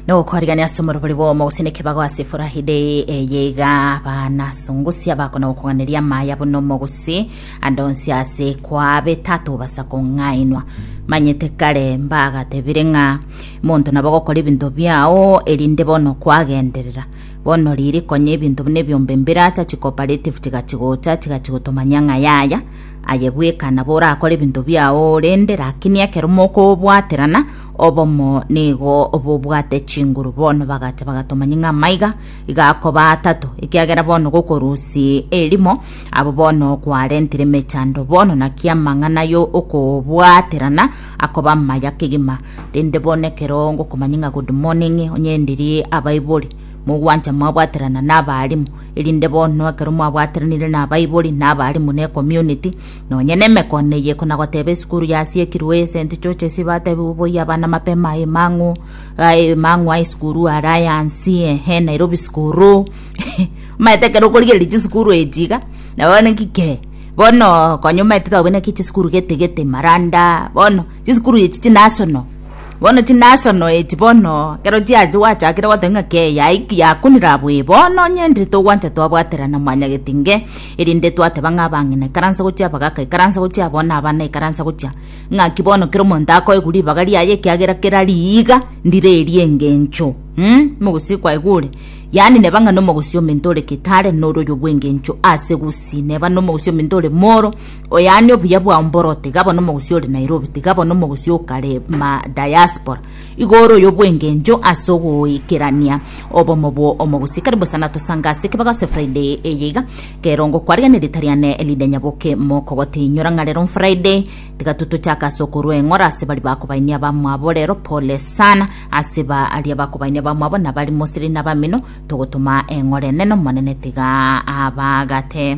nogokorigania ase omorobori bwomo gose nekebago ase furahi day eye iga abana songosia bakona gokoganeria amaya buna omogosi ande onsi ase kwabe tatobasa kong'ainwa manyete kare mbagatebire ng'a monto nabo gokora ebinto biao erinde bono kwagenderera bono riri konya ebinto buna ebiombe mbiracha chicooperative chigachigocha chigachigotomania ng'a yaya aye bweka nabo orakore ebinto biao rende lakini ekero mokobwaterana Obomo nigo bobwate chinguru bono bagati bagatomanya ng'a maiga igakoba atato ekiagera bono gokorusi erimo abo bono kwarentire mechando bono naki amang'ana yo okobwaterana akoba maya kegima rende bono ekero ngokomanya ng'a good morning onyendirie abaibori mogwancha mwabwaterana na abarimu erinde bono ekero mwabwateranire na abaibori na abarimu ne community Nonya nemekone eye konagoteba esukuru yasiekirwe esenti chochesi batebigwe boyia abana mapema aye mang'u aye mang'u aye sukuru ara yansi ehe Nairobi sukuru maete kero korigereria chisukuru echiga na bono kike bono konye maete twabwene ki chisukuru gete gete maranda bono chisukuru echi chinasono bono chinasono echi bono kero chiachi gwachakire goteba ng'a ke yakunire abwo bono onye ndiri togwancha twabwaterana mwanyagetinge Erinde twateba ng'a abang'ina naikaranse gochia abagaka naikaranse gochia aboo na abana naikaranse gochia ng'aki bono kera omonto akoegwa ribaga riaye ekiagera kera riiga ndire erie engencho um, omogosi kwaigure Yaani neba ng'a nomogosi ominto ore kitare nore oyo bw'engencho ase gusii neba nomogosi ominto ore moro o yaani obuya bwao mboro tiga bono omogosi ore Nairobi tiga bono omogosi okare ma diaspora Igoro y'obwengencho ase ogoikerania obomo bwo omogosikari bosa natosanga ase ekebago ase Friday eye iga, kerongo kwaria ne Ritariane ridenya boke mokogotinyora ng'a rero Friday tiga totochake ase okorua eng'ora ase bari bakobainia abamwabo rero pole sana ase ba aria bakobainia abamwabo na bari mosiri na bamino togotoma eng'ora enene omonene tiga abagate.